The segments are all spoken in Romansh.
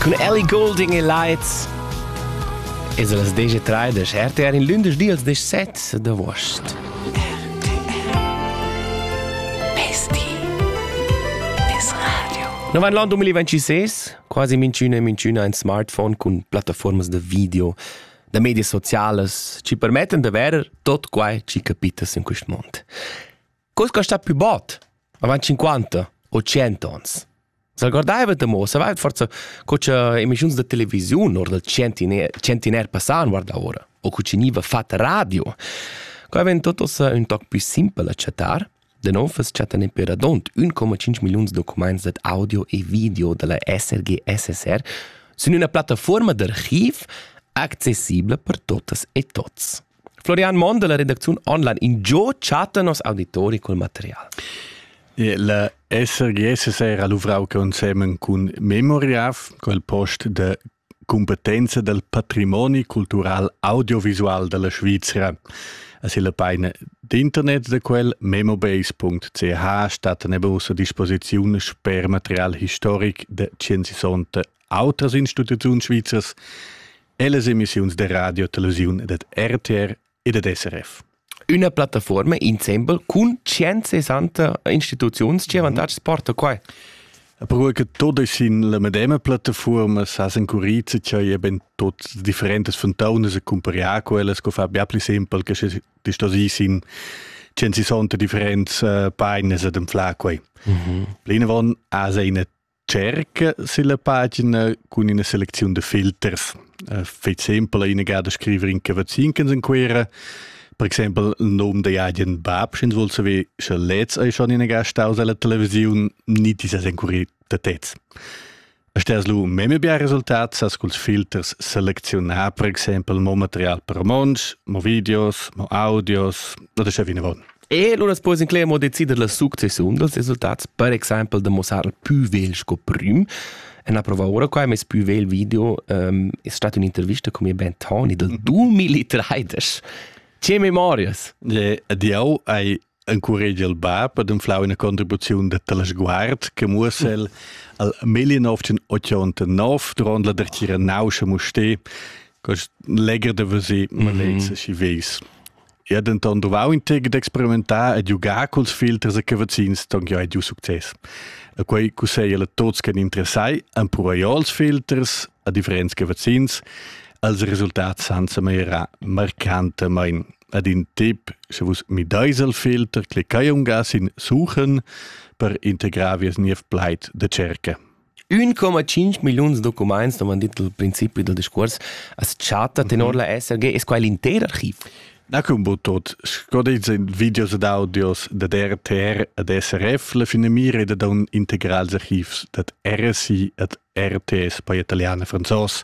Cun Ellie Goulding e Lights es las deje treidesch RTR in lündesch dials desch set d'avuost. No van l'an 2026, quasi minchüna e minchüna ein smartphone cun plattaformas da video, da medias socialas, ci permettan da verer tot quai ci capitas in quist mond. Cos che sta più bot avant 50 o 100 ons. S'algordaiva da mo, savaivat forsa co cha emissiuns da televisiun or dal centiner, centiner passà han guardà ora, o co ch'igniva fat radio. Qua ven tot ossa ün toc pü simpel a chattar, da non fes chattan in peradont 1,5 milliuns documents dad audio e video da la SRG SSR sün üna plattafuorma d'archiv accessibla per totas e tots. Florian Monn della redacziun online in gio chatta nos auditori col material. Il SRGS s'era luvrau consiemen cun Memoriaf, quel post de competenza del patrimoni cultural audiovisual della Svizzera. Es il peine d'internet de quel memobase.ch stat nebus a disposiziun sper material historic de Cienzisonte autras instituziuns svizzers e las emissiuns da radio, televisiun ed RTR e da SRF. Üna plattaforma insembel cun 160 instituziuns che avantatgs porta qua? Però che tot es in la medema plattaforma sa s'encurizza che ben tots differentes fontaunas e cumparià quellas co fa bia pli simpel che se ti sto sis in 160 differents uh, painas ed enfla quei. Mm -hmm. Plinavon ha se ina Tscherca silla pagina cun ina selecziun da filters. Eh, Fai exempel inagà da scrivere in cavazzin che in Quera. Per exempel il nome da agen bab, sch'ins vuol saver, sche lez è schon inagà staus alla televisiun, ni ti ses encuri da tez. Stas lu meme bia resultat sas culs filters selezionar, per exempel mo material per monds, mo videos, mo audios, oder sche vinavon. E lura puoi incler mo decider la successiun dals resultats, per exempel da mossar il più vegl sco prim. En approva ora qua mes più vegl video um, è stata un'intervista con mio ben Tony del 2013. Ce memorias? Le adieu ai encourage il bab ad inflau una contribuzione de telesguard che muossel al 1989 durant la dertgira nauscia muste, cos legger de vesi, ma mm -hmm. si vis. Ich habe dann auch integ d'experimentar e giugar culs filters e cavazzins don jo giu success. E quei cusseglia a tots che interessai an puraiò els filters a differents cavazzins als resultats senza meira marcantamain. Ad in tip, se vus mi deis al filter, clicai un gas in suchen per integrar vies niev plait de cerca. 1,5 milliuns documents, avon detto il principio del discuors, as chatta tenor la SRG, es quai l'inter archiv? Na cum bod tot, sco dets in videos ed audios dad RTR ed SRF, la finamira è da un integrals archivs dad RSI ed RTS, poi italiano e franzos.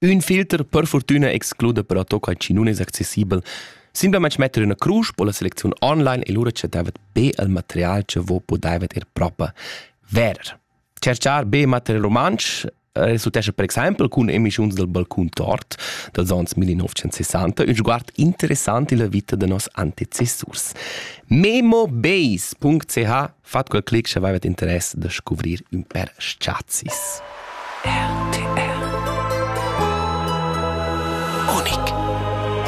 Ün filter per fortüna excluda però toca chi nun es accessibel. Simplamaing metter üna crusch po la selecziun online e lura cha davet be il material cha vo pudaivet ir proper verer. Tscherchar be material rumantsch resultescha per exaimpel cun emischiuns dal balcun tort dals ons 1960 ün sguard interessant illa vita da nos antecessurs. memo-base.ch Fat quel clic sche aveva interess da scuvrir ün pêr s-chazis. RTR Unic